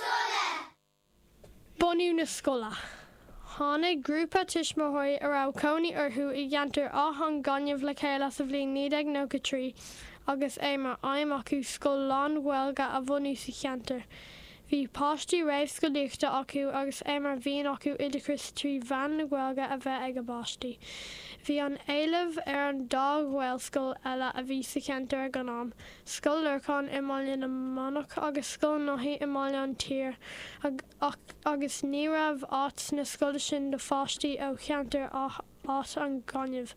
scoile. Bunú na scoile. Tháinig grúpa tuismitheoirí a raibh cónaí orthu i gceantar Áth an Ghainimh le chéile sa bhliain 1993 agus é mar aidhm acu scoil lán-Ghaeilge a bhunú sa cheantar. Bhí páistí réamhscolaíochta acu agus é mar mhian acu oideachas trí mheán na Gaeilge a bheith ag a bpáistí. Bhí an-éileamh ar an dá ghaelscoil eile a bhí sa cheantar ag an am, Scoil Lorcáin i mBaile na Manach agus Scoil Naithí i mBaile an tSaoir ach agus ní raibh áit sna scoileanna sin do pháistí ó cheantar Áth an Ghainimh.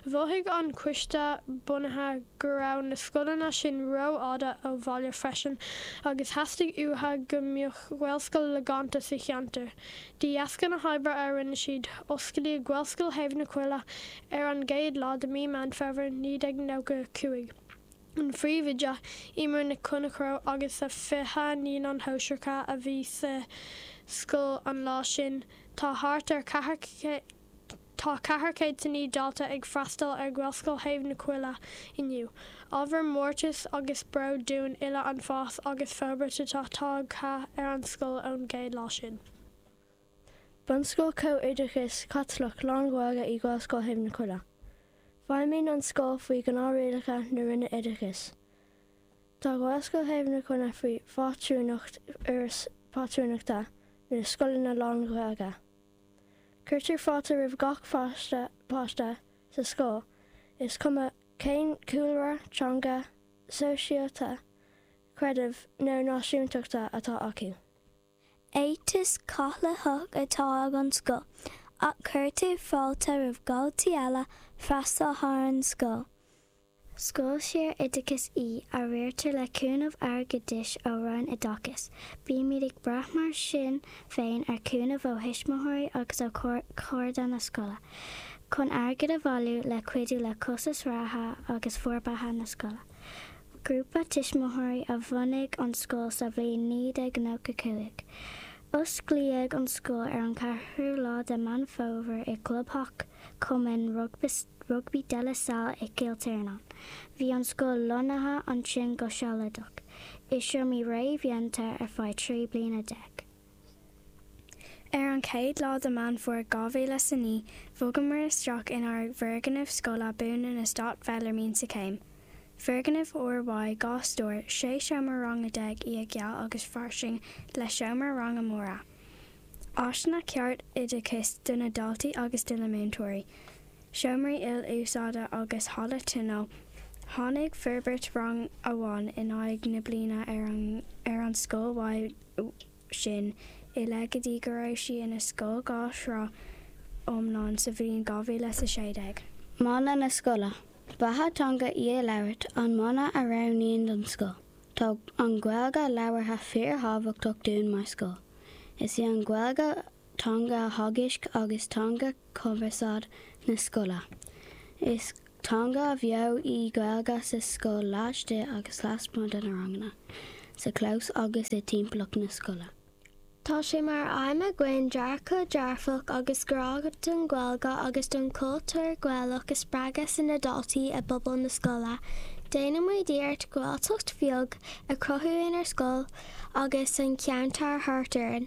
Mhothaigh an coiste bunaithe go raibh na scoileanna sin rófhada ó bhaile freisin agus theastaigh uatha go mbeadh Gaelscoil logánta sa cheantar. De dheasca na hoibre a rinne siad, osclaíodh Gaelscoil Thaobh na Coille ar an gcéad lá de mí Meán Fómhair 1995. an phríomhoide, Emer Nic Chonchradha agus a 20 naíonán shóisearacha a bhí sa scoil an lá sin. Tá thart ar Tá 409 dalta ag freastal ar Ghaelscoil Thaobh na Coille inniu. Ábhar mórtais agus bróid dúinn uile an fás agus forbairt atá tagtha ar an scoil ón gcéad lá sin. Bunscoil Comh-Oideachais Chaitliceach Lán-Ghaeilge í Gaelscoil Thaobh na Coille. Feidhmíonn an scoil faoi ghnáthrialacha na Roinne Oideachais. Tá Gaelscoil Thaobh na Coille faoi phátrúnacht Fhoras Pátrúnachta na Scoileanna Lán-Ghaeilge. Cuirtear fáilte roimh gach páiste páiste sa scoil, is cuma cén cúlra, teanga, sóisialta, creidimh nó náisiúntachta atá acu. Éiteas Caitliceach atá ag an scoil ach cuirtear fáilte roimh dhaltaí eile freastal ar an scoil. Scoil saor-oideachais í a riartar le cúnamh airgeadais ó Roinn Oideachais. Bímid ag brath mar sin féin ar chúnamh ó thuismitheoirí agus ó chairde na scoile chun airgead a bhailiú le cuidiú le costas reatha agus forbartha na scoile. Grúpa tuismitheoirí a bhunaigh an scoil sa bhliain 1995. Osclaíodh an scoil ar an 4ú lá de Meán Fómhair i gclubtheach Cumann Rugbaí De La Salle i gCill Tiarnáin. Bhí an scoil lonnaithe ansin go sealadach i seomraí réamhdhéanta ar feadh trí bliana déag. Ar an chéad lá de Mheán Fómhair 2009, bhogamar isteach inár bhfoirgneamh scoile buan in Eastát Belarmine sa Chéim. Foirgneamh úrnua, dhá stór, sé seomra ranga déag, í ag geal agus fairsing le seomra ranga móra, áiseanna cearta oideachais do na daltaí agus do na múinteoirí, seomraí il-úsáide agus halla tionóil. Tháinig forbairt rang amháin in aghaidh na bliana ar an scoil i, sin i leith go dtí go raibh sí ina scoil dhá shraith iomlán sa bhliain 2016. Mana na scoile, 'Beatha teanga í a labhairt' an mana a roghnaíodh don scoil. Tá an Ghaeilge labhartha fíorthábhachtach dúinn mar scoil. Is í an Ghaeilge teanga teagaisc agus teanga cumarsáid na scoile. Is teanga bheo í an Ghaeilge sa scoil laistigh agus lasmuigh de na ranganna, sa chlós agus i dtimpeallacht na scoile. Tá sé mar aidhm againn dearcadh dearfach agus grá don Ghaeilge agus don chultúr Gaelach a spreagadh sna daltaí i bpobal na scoile. Déanaimid iarracht Gaeltacht bheag a chruthú inár scoil agus sa cheantar thart orainn.